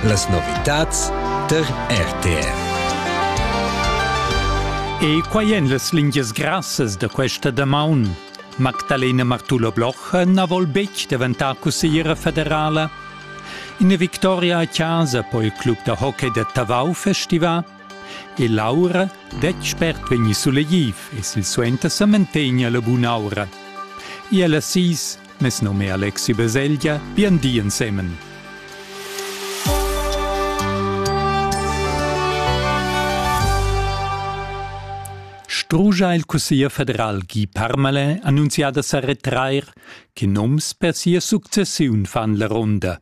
Las novitads tar RTR. E quai èn las lingias grassas da questa damaun. Magdalena Martullo-Bloch na vol betg daventar cussigliera federala. Ina victoria a casa po il club da hockey da Tavau festivar. E l'aura detg spert vegni sulegliv e sil suenter sa mantegna la bun'aura. E alla sis Mes nom è Alexi Baselgia, bien di ensemen. Strugia il Cussegl federal Guy Parmalin annunzià da sa retrair, che noms per sia successiun fan la ronda.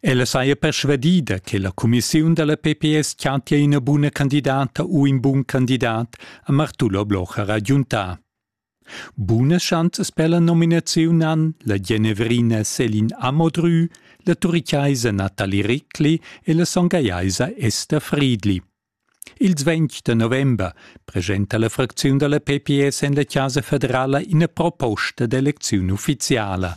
Ella saja persvadida che la cumissiun da la pps chantia ina buna candidata u in bun candidat, ha Martullo Blocher agiuntà. Bunas schanzas per la nominaziun han la Genevrina Selin Amodrü, la turichaisa Nathalie Rickli e la songajaisa Esther Friedli. Ils 20 da november presenta la fracziun da la PPS en la Chasa federala ina proposta d'elecziun uffiziala.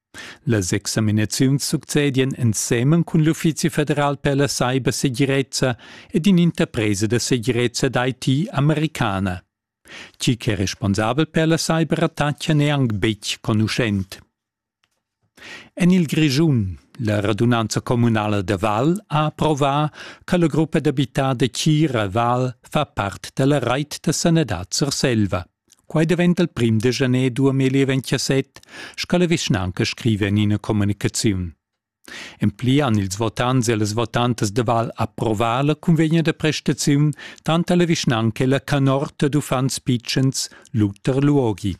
Las examinaziuns succedien ensemen cun l'Uffizi federal per la cybersegirezza ed in'interpresa da segirezza d'IT americana. Tgi che è responsabel per la cyberattacca n'è anc betg conuschent. En il Grischun, la radunanza communala da Val ha approvà che la gruppa d'abitar da Tgira Val fa part da la rait da sanadad Surselva. Quai daventa il prim de janer 2017, sco la vischnanca scriva en ina communicaziun. En pli han ils votants e las votantas de Val approvar la convegna de prestaziun tant alla vischnanca e la canorta d'uffants pitschens Luther Luogi.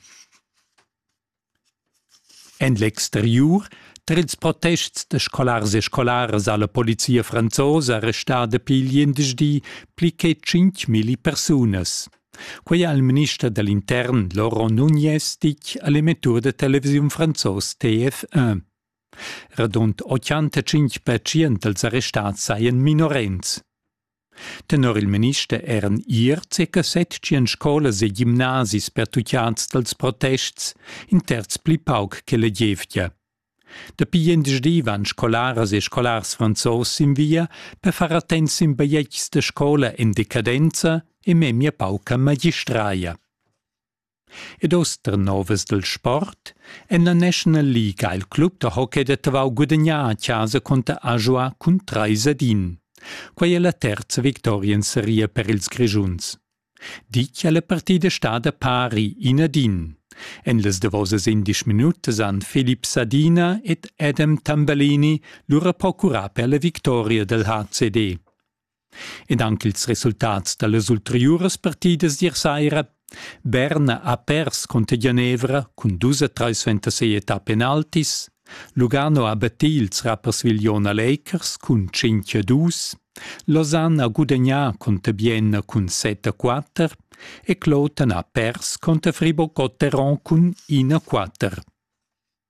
En l'exteriur tar ils protests da scolars e scolaras ha la polizia franzosa arrestà dapi gliendisdi pli che tschintgmilli persunas. Quei ha il minister da l'intern Laurent Nunez ditg a l'emettur da televisiun franzos TF1. Radund 85% dals arrestats sajan minorens. Tenor il minister eran ier circa setschien scolas e gimnasis pertucciads dals protests, in terz pli pauc che la gievgia. Dapi gliendisdi van scolaras e scolars franzos sin via per far attents sin bajetgs da scola en decadenza e memia pauca magistraia. Ed oster novas del sport, en la National League ha il club da hockey da Tavau gudagnà a chasa conter Ajoa cun 3 ad 1. Quai è la terza victoria in seria per ils Grischuns. Ditg è la partida stada pari in ad in. En las davosas indesch minutas han Filip Sadina ed Adam Tambellini lura procurà per la victoria del HCD. ed anc ils resultats da las ulteriuras partidas d'ier saira. Bern ha pers cunter Genevra cun dus a trais ventasei età penaltis. Lugano ha battì ils rappersviglion a Lakers cun 5 a 2. Lausanne ha gudagnà cunter Bienna cun 7 a 4 e Cloton ha pers cunter Fribourg-Gotteron cun 1 a 4.